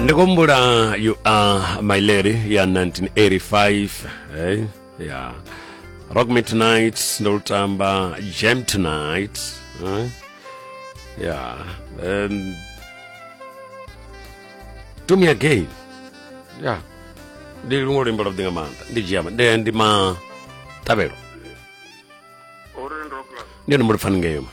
ndi kumbula you are my lady ya 1985 hey? ya rock me tonight ndo lutamba jam tonight eh? ya um, do me again ya ndi luṅwe luimbo lwa vhuḓinga maanḓa ndi dzhia ndi ndi ma ṱavhelo Orange Rockland. ndi hone mulipfani ngeyo ma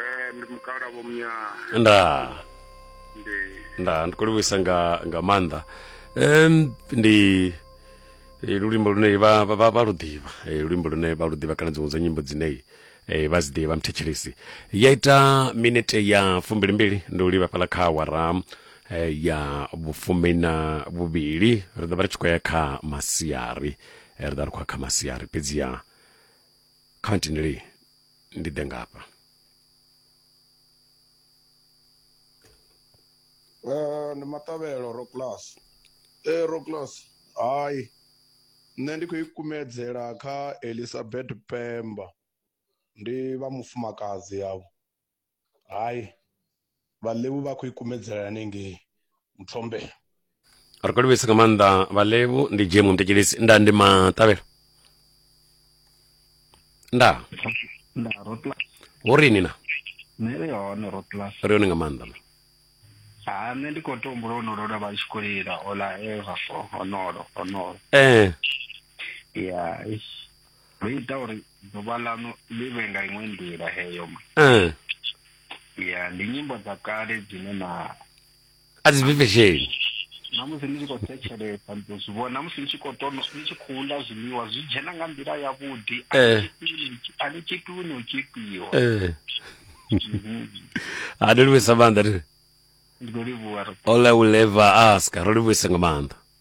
Eh, ndi mukala vho mnyaa nda ndi nda ndi khou livhuisa nga nga maanḓa um, ndi eh, lulimbo lune vha vha- vha vha lu ḓivha Eh, lulimbo lune vha lu ḓivha kana dziṅwe dza nyimbo dzine eh, vha dzi ḓivha mthetshelesi ya ita minete ya fumbilimbili ndi u livha fhala kha wara eh, ya vhufumi na vhuvhili ri ḓo vha ri tshi khou ya kha masiari Eh, ri ḓo vha ri khou ya kha masiari fhedziha kha ntindelei ndi ḓe ngafha Eh, ndi maṱavhelo roclas e roclas hai nṋe ndi khou i kumedzela kha elizabeth pemba ndi vha mufumakadzi yavho hai vhalevu vha khou ikumedzela hanengei muthombe ri khou livhisa nga maanḓa vhalevu ndi jemu mtekelisi nda ndi maṱavhelo nda nda rotlas wo rini na nṋe ri hone rotlas ri hone nga maanḓa ma ha nṋe ndi khou tombula honolo lwa vha tshi khou lila ola eva fo honolo honolo ee ya ndo ita uri ḓuvha ḽaṋu ḽi vhe nga iṅwe nḓila heyo ma eh ya ndi nyimbo dza kale dzine na a dzi bvi fesheni na musi ni tshi khou thetshelesa ndi ḓo zwi vhona musi ni tshi khou tono ni tshi khou ḽa zwiḽiwa zwi dzhena nga nḓila yavhuḓi a Eh. ni tshipiwi ni tshi- a ni tshipiwi ni u tshipiwa eh Mhm. ha ndo livhuisa maanḓa ri ndi khou livhuwa ri all i will ever ask ro livhuisa nga maanḓa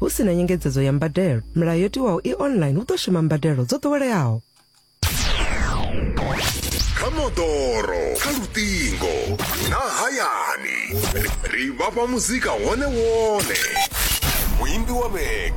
Hu si na nyengedzedzo ya mbadelo, milayo yo tiwaho i online hu ḓo shuma mbadelo dzo ḓoweleaho. kha moḓoro kha luṱingo na hayani ri vhafha muzika wone wone muimbi wa vhege